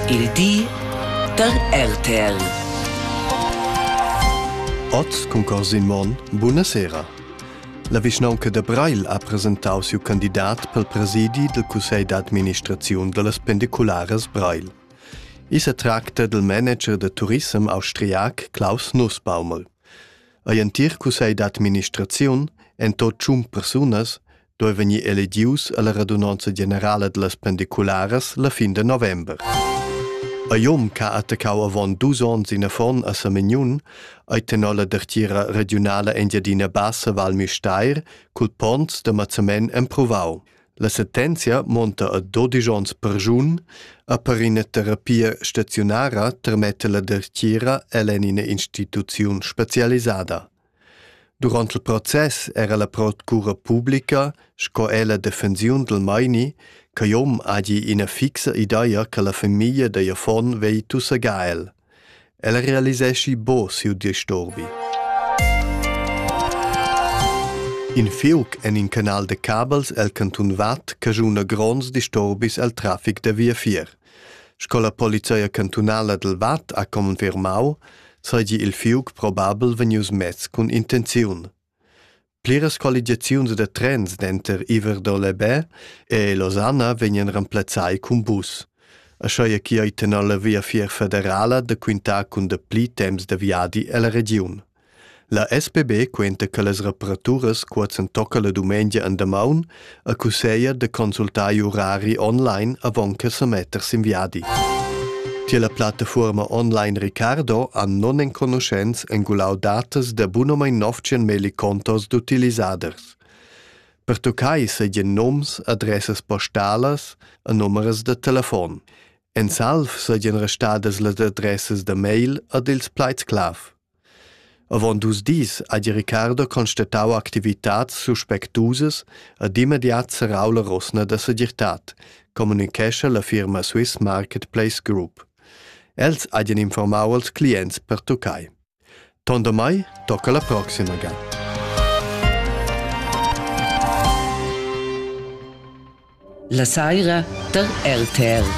Il di da RTL. Oz cun Corsin Monn, buna sera. La vischnaunca da Breil ha presentau siu candidat pel presidi del cussegl d'administraziun dallas pendicularas Breil. I se tracta del manager da turissem austriac Klaus Nussbaumel. Ei entir cussegl d'administraziun, en tot tschun persunas, doi vegnir eledius alla radunanza generala dellas pendicularas la fin de november. A Jom ca attaccau avon dus ons in affon a Samignun, ei tenor la dertira regionala Engiadina Bassa Val Misteir cul ponns de Mazzamen emprovau. La sentenzia monta a 12 ons per giun, a per ina terapia staziunara termette la dertira ell'en ina instituziun specialisada. Durant il process era la procura publica sco er la defensiun dal meini ch'igl hom hagi ina fixa ideia che la famiglia da affon vegli tussegar el. El realiseschi bo siu disturbi. In fiuc en in canal de cabels el cantun Watt cajuna gronds disturbis el traffic da via fier. Sco la polizia cantunala dal Vad ha confermau, seigi il fiug probabel vegnius mess cun intenziun. Pliras qualigiaziuns da trens denter Iver-Dolebè e Losanna vegnan remplazzai cun bus. Aschia che ei tenor la Via Fier federala da quintar cun dapli temps da viadi ella regiun. La SPB quenta che las reparaturas qua s'entocca la dumengia en damaun e cusseglia da consultar i urari online avon che sa metter sin viadi. Tier la plattafuorma online Ricardo han non enconuschents engulau datas da bunomein 900 melicontos d'utilisaders. Per toccai seigien noms, adressas postalas e numeras da telefon. En salv seigien restadas las adressas da mail ed ils plaids clav. Avon dus dis ha di Riccardo constatau activitads suspectusas ed immediat serrau la rosna da segirtad, communicescha la firma Swiss Marketplace Group. Els hajan informau als clients pertuccai. Tondamai tocca la proxima ga. La saira tar RTL.